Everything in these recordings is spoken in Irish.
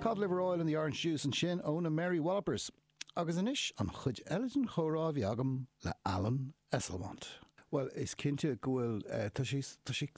Cod Liver Oil and the Orange Juice ansin ó na Mary Wallopers. Agus anois an chuid eile den chomhrá a bhí agam le Alan Esslemont. Bhuel, is cinnte go bhfuil, tá sé, tá sé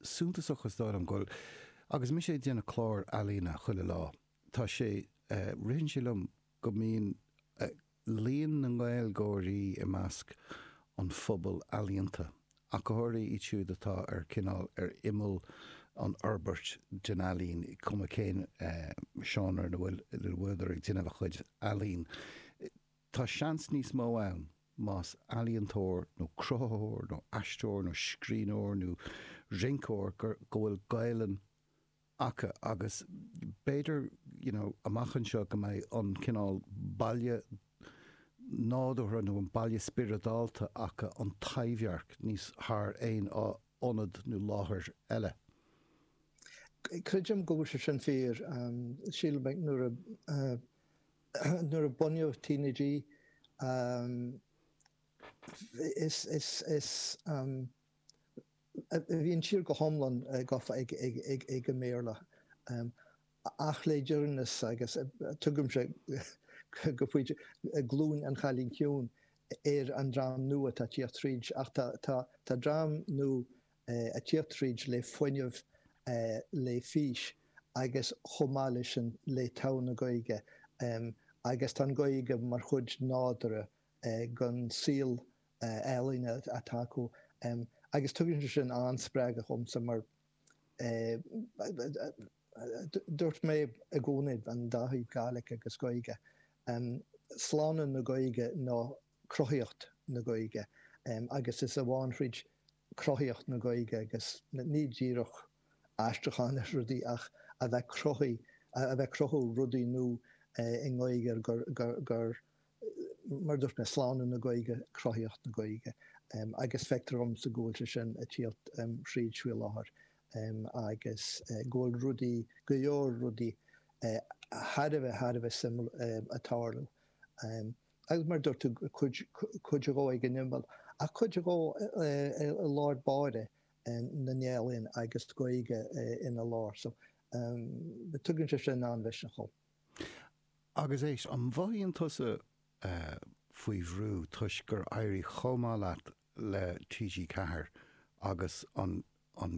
suntasach is dóigh liom go bhfuil, agus mise ag déanamh clár ealaíne chuile lá, tá sé, ritheann sé liom go mbíonn, líon na nGaeilgeoirí i measc an phobail ealaíonta, ach go háirithe iad siúd atá ar, cineál, ar imeall an fhorbairt den ealaín, cuma cén seánra ina bhfuileadar ag déanamh a gcuid ealaín. Tá seans níos mó ann más ealaíontóir nó cruthaitheoir nó aisteoir nó scríbhneoir nó rinceoir go bhfuil Gaelainn acu agus b'fhéidir you know amach anseo go mbeidh an cineál baile nádúrtha nó an baile spioradálta acu, an Taibhdhearc, níos thar aon ionad nó láthair eile. Creidim go bhfuil sé sin fíor. Sílim nuair a nuair a bunaíodh TnaG is is is. Bhí an tír go hiomlán gofa ag an mBéarla, ach le deireanas, agus tugaimse, go pointe, Glúin an Chailín Ciúin ar an dream nua atá ag tíocht tríd, ach tá dream nua ag tíocht tríd le fuinneamh, le fís agus chomh maith leis sin le togha na Gaeilge, agus tá an Ghaeilge mar chuid nádúrtha den saol ealaíne atá acu agus tugann sé sin an-spreagadh dhomsa mar dúirt mé i gcónaí an dá thaobh Gàidhlig agus Gaeilge, slánú na Gaeilge nó cruthaíocht na Gaeilge agus is amháin thríd cruthaíocht na Gaeilge agus ní díreach aistriúchán ar rudaí ach a bheith, a bheith cruthú rudaí nua i nGaeilge gur mar a dúirt mé, slánú na Gaeilge, cruthaíocht na Gaeilge agus feictear dhomsa go bhfuil sé sin ag tíocht thríd faoi láthair agus go bhfuil rudaí, go leor rudaí thar a bheith, thar a bheith suimiúil ag tarlú agus mar a dúirt tú, cuid dhó ag an imeall ach cuid dhó i lár báire na n-ealaíon agus Gaeilge ina lár so tugann sé sin an-mhisneach dhom. Agus éist, an mhothaíonn tusa faoi bhrú toisc gur éirigh chomh maith leat le TG4 agus an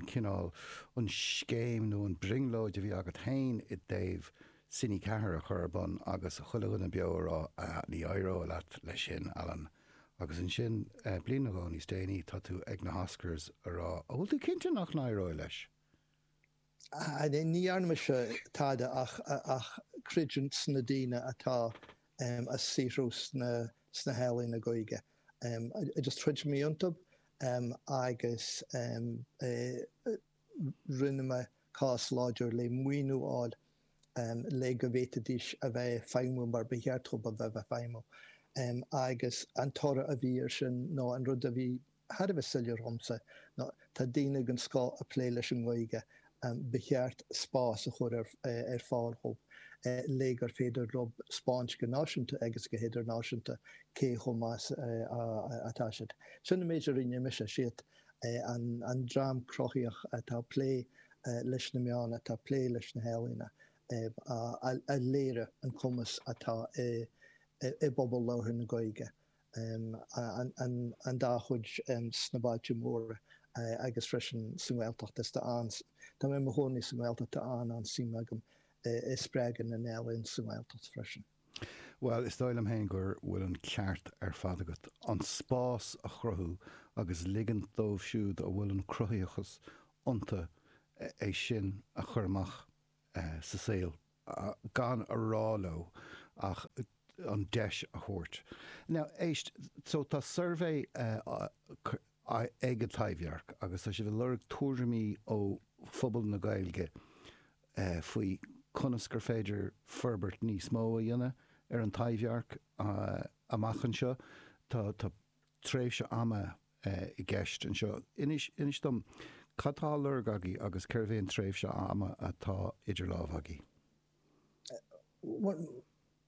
cineál, an scéim nó an brionglóid a bhí agat féin i dtaobh Cine4 a chur ar bun agus chuile dhuine beo a rá, ah, ní éireoidh leis sin, Alan. Agus ansin, bliain nó dhó níos déanaí, tá tú ag na hOscars a rá, an bhfuil tú cinnte nach n-éireoidh leis? Ní dhearna mise tada ach creidiúint sna daoine atá ag saothrú sna healaíona Gaeilge. Agus throid mé iontu agus rinne mé cás láidir le maoiniú a fháil le go bhféadfaidís a bheith ag feidhmiú mar ba cheart dhóibh a bheith ag feidhmiú. Agus an toradh a bhí air sin, nó an rud a bhí thar a bheith soiléir dhomsa ná, tá daoine den chéad scoth ag plé leis an nGaeilge, ba cheart spás a chur ar fáil dhóibh, le gur féidir dhóibh 'spáint go náisiúnta agus go hidirnáisiúnta cé chomh maith is atá siad. Sin an méid a rinne mise. Siad an dream cruthaíoch atá ag plé leis na meáin, atá ag plé leis na healaíona, a léirigh an cumas atá i bpobal labhartha na Gaeilge. an-chuid sna bailte móra agus freisin sa nGaeltacht. Is tá an, tá mé i mo chónaí sa nGaeltacht, tá an-, an-suim agam i spreagadh na n-ealaíon sa nGaeltacht freisin. Bhuel, is dóigh liom féin go bhfuil an ceart ar fad agat. An spás a chruthú agus ligint dóibh siúd a bhfuil an cruthaitheachas iontu é sin a chur amach. sa saol gan a rá leo ach an deis a thabhairt. Now, éist, so tá suirbhé ag an Taibhdhearc agus tá siad ag lorg tuairimí ó phobal na Gaeilge faoi conas gur féidir forbairt níos mó a dhéanamh ar an Taibhdhearc amach anseo. Tá tréimhse ama i gceist anseo. Inis, inis dom, cad tá á lorg agaibh agus cad é an tréimhse ama atá idir lámha agaibh? Bhuel,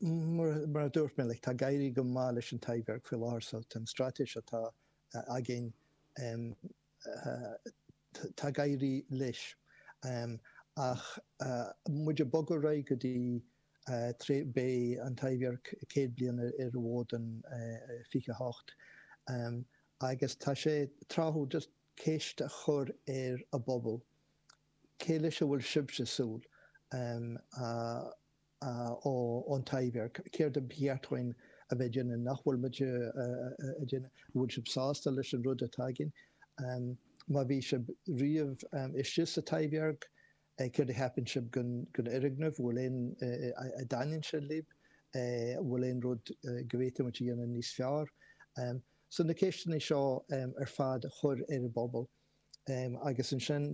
mar a dúirt mé, like, tá ag éirí go maith leis an Taibhdhearc faoi láthair, so tá an straitéis atá againn, eh, Tá ag éirí leis. Ach tá muid ag bogadh ar aghaidh go dtí tré, beidh an Taibhdhearc céad bliain ar an bhfód in 28. Agus tá sé tráthúil just ceist a chur ar an bpobal, cé leis a bhfuil sibhse ag súil? ón Taibhdhearc, céard a ba cheart dhúinn a bheith ag déanamh, nach bhfuil muid ag déanamh, an bhfuil sibh sásta leis an rud atá againn, má bhí sibh riamh istigh sa Taibhdhearc, céard a cheapann sibh den fhoirgneamh, an bhfuil aon, a dtaitníonn sé libh, an bhfuil aon rud go bhféadfadh muid a dhéanamh níos fearr. So na ceisteanna seo ar fad a chur ar an bpobal. Agus ansin,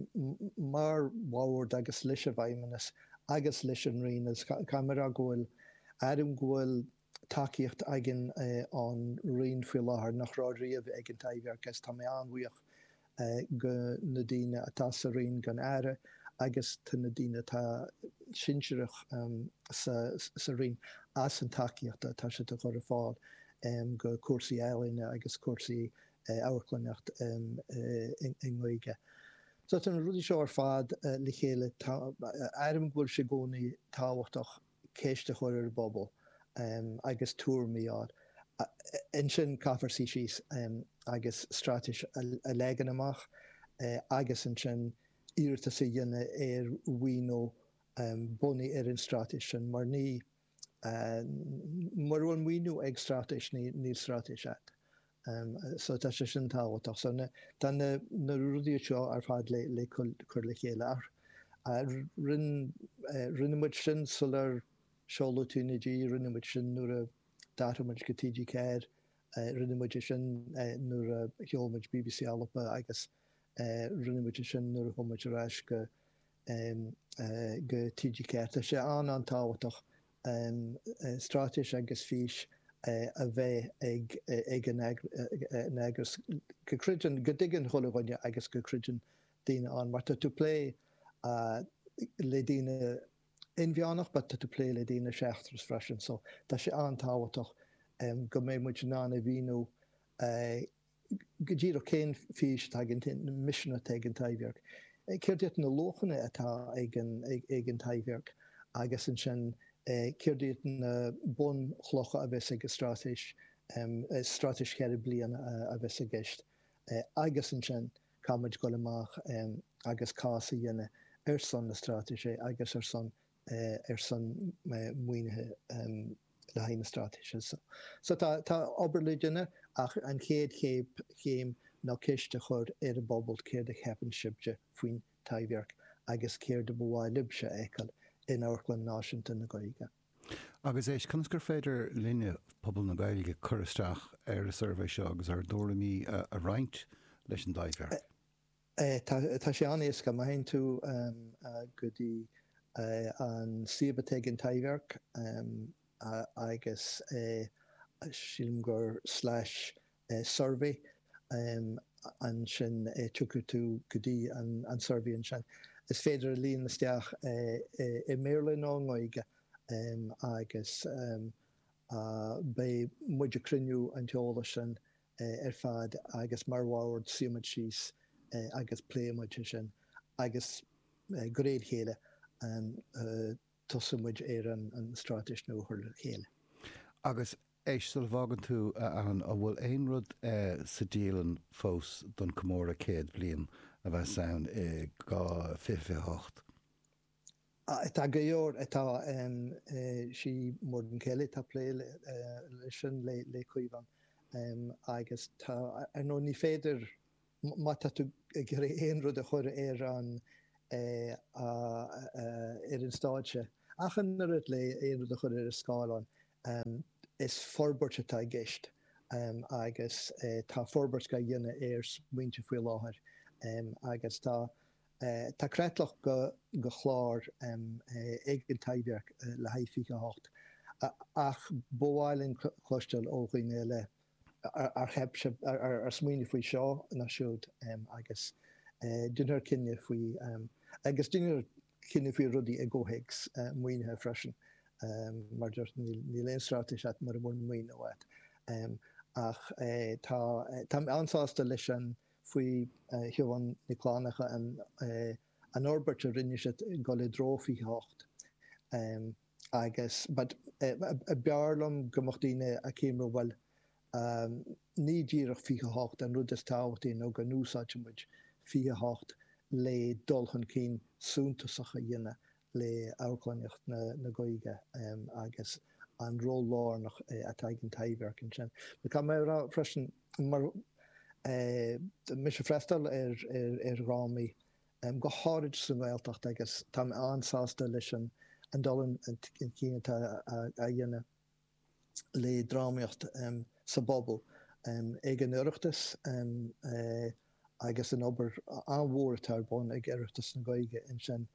mar bhord agus leis an bhFeidhmeannas agus leis an Roinn, agus caithfidh mé a rá go bhfuil, airím go bhfuil tacaíocht againn ón Roinn faoi láthair nach raibh riamh ag an Taibhdhearc, agus tá mé an-bhuíoch de na daoine atá sa Roinn go dtí an tAire agus de na daoine atá sinsearach sa Roinn as an tacaíocht atá siad a chur ar fáil do chúrsaí ealaíne agus cúrsaí amharclannaíocht i nGaeilge. So tá na rudaí seo ar fad le chéile, airím go bhfuil sé i gcónaí tábhachtach ceist a chur ar an bpobal agus tuairimí a fháil. Ansin caithfear suí síos agus straitéis a leagan amach agus ansin iarratas a dhéanamh ar mhaoiniú bunaithe ar an straitéis sin, mar ní. Mura bhfuil maoiniú ag straitéis, níl straitéis agat. So tá sé sin tábhachtach. So tá na rudaí seo ar fad le cur le chéile. Rinne muid sin sular seoladh TnaG, rinne muid sin nuair a d'athraigh muid go TG4, rinne muid é sin nuair a sheol muid BBC Alba agus rinne muid é sin nuair a chuaigh muid ar ais go go TG4. Tá sé an-an-tábhachtach straitéis agus fís a bheith ag eagras go gcreideann, go dtuigeann chuile dhuine agus go gcreideann daoine ann. Mar tá tú ag plé le daoine inmheánach but tá tú ag plé le daoine seachtrach freisin so tá sé an-tábhachtach go mbeidh muid in ann a mhíniú go díreach cén fís atá againn, an misean atá ag an Taibhdhearc, céard iad na luachanna atá ag an Taibhdhearc agus ansin céard iad na bunchlocha a bheas ag an straitéis, straitéis ceithre bliana a bheas i gceist agus ansin caithfidh muid a dhul amach agus cás a dhéanamh ar son na Straitéise agus ar son ar son maoinithe le haghaidh na straitéise seo. So tá obair le déanamh ach an chéad chéim ná ceist a chur ar an bpobal céard a cheapann sibhse faoin Taibhdhearc agus céard a ba mhaith libhse a fheiceáil in amharclann náisiúnta na Gaeilge. Agus éist, conas gur féidir linne, pobal na Gaeilge, cur isteach ar an suirbhé seo agus ár dtuairimí a roinnt leis an dTaibhdhearc? Tá sé an-éasca, má théann tú go dtí an suíomh atá ag An Taibhdhearc agus sílim gur slash survey, ansin tiocfaidh tú go dtí an suirbhé ansin. Is féidir a líonadh isteach i mBéarla nó i nGaeilge agus beidh muid ag cruinniú an t-eolas sin ar fad agus mar bhord suífidh muid síos agus pléifidh muid ansin agus de réir a chéile tosóidh muid ar an stráitéis nua a chur le chéile. Agus éist, sula bhfágann tú, a Ann, an bhfuil aon rud sa dialann fós don comóradh céad bliain a bheas ann i 2028? Tá go deimhin, tá. Is í Muireann Kelly, atá ag plé leis sin le Caomhán agus tá, ar ndóigh, ní féidir, má tá tú ag iarraidh aon rud a chur ar an stáitse, ach an oiread le aon rud a chur ar an scáileán, is forbairt atá i gceist agus tá forbairt á dhéanamh ar smaointe faoi láthair agus tá, Tá creatlach de chlár ag an Taibhdhearc le haghaidh 28, ba mhaith linn cloisteáil ó dhaoine eile ar cheap sibh, ar smaoinigh faoi seo nó siúd agus déanfar cinneadh faoi, agus déanfar cinneadh faoi rudaí i gcomhthéacs maoinithe freisin. Mar a dúirt, níl aon straitéis agat mura bhfuil maoiniú agat. Ach tá, tá mé an-sásta leis an faoi Shiobhán Nic Fhlannchadha an fhorbairt a rinne siad ag dul i dtreo 28 agus but b'fhearr liom go mbeadh daoine ag ceapadh bhuel ní díreach 28 an rud is tábhachtaí nó go n-úsáidfidh muid 28 le dul chun cinn suntasach a dhéanamh le amharclannaíocht na Gaeilge agus an ról lárnach atá ag An Taibhdhearc ansin. Caithfidh mé a rá freisin mar tá mise ag freastal ar dhrámaí, go háirid sa nGaeltacht agus tá mé an-sásta leis an dul chun cinn atá á dhéanamh. le drámaíocht sa bpobal ag an Oireachtas agus an obair an-mhór atá ar bun ag Oireachtas na Gaeilge ansin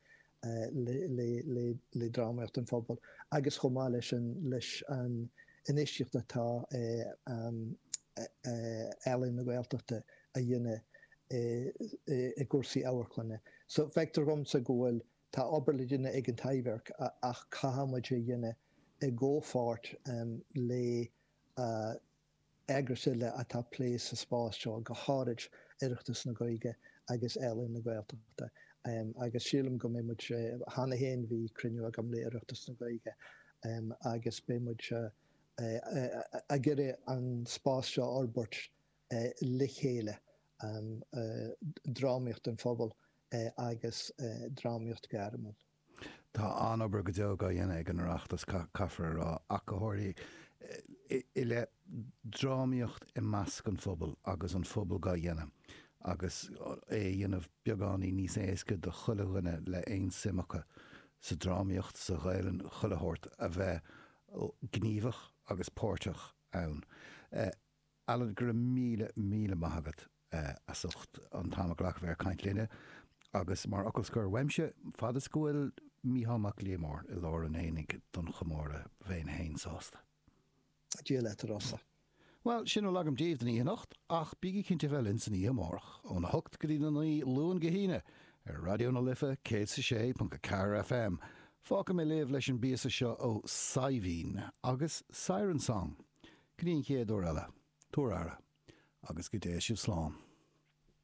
le drámaíocht an phobail agus chomh maith leis an leis an infheistíocht atá Ealaín na Gaeltachta a dhéanamh i gcúrsaí amharclainne. So feictear dhomsa go bhfuil an Tá obair le déanamh ag an Taibhdhearc ach caithfidh muid é a dhéanamh i gcomhpháirt le heagrais eile atá ag plé sa spás seo, go háirid Oireachtas na Gaeilge agus Ealaín na Gaeltachta. Agus sílim go mbeidh muid, cheana féin bhí cruinniú agam le Oireachtas na Gaeilge agus beidh muid ag iarraidh an spás seo a fhorbairt le chéile, drámaíocht an phobail agus drámaíocht ghairmiúil. Tá an-obair go deo á dhéanamh ag an Oireachtas, caithfear a rá, ach go háirithe, i leith drámaíocht i measc an phobail agus an pobal á dhéanamh agus é a dhéanamh beagáinín níos éasca do chuile dhuine le haon suim acu sa drámaíocht, sa Ghaelainn, chuile shórt, a bheith gníomhach agus páirteach ann. Alan, go raibh míle míle maith agat as ucht an t-am a ghlacadh ag caint linne. Agus mar fhocal scoir uaimse, fad is go bhfuil Mícheál Mac Liammóir i lár an aonaigh don chomóradh, bheinn féin sásta. Dia leat, a Rossa. Bhuel, sin a bhfuil agam daoibh don oíche anocht, ach bígí cinnte a bheith linn san oíche amárach, óna hocht go dtína naoi, Luan go hAoine, ar Raidió na Life, 106.4 FM. Fágfaidh mé libh leis an bpíosa seo ó Saidhbhín agus Siren Song. Go dtí an chéad uair eile, tabhair aire, agus go dté sibh slán.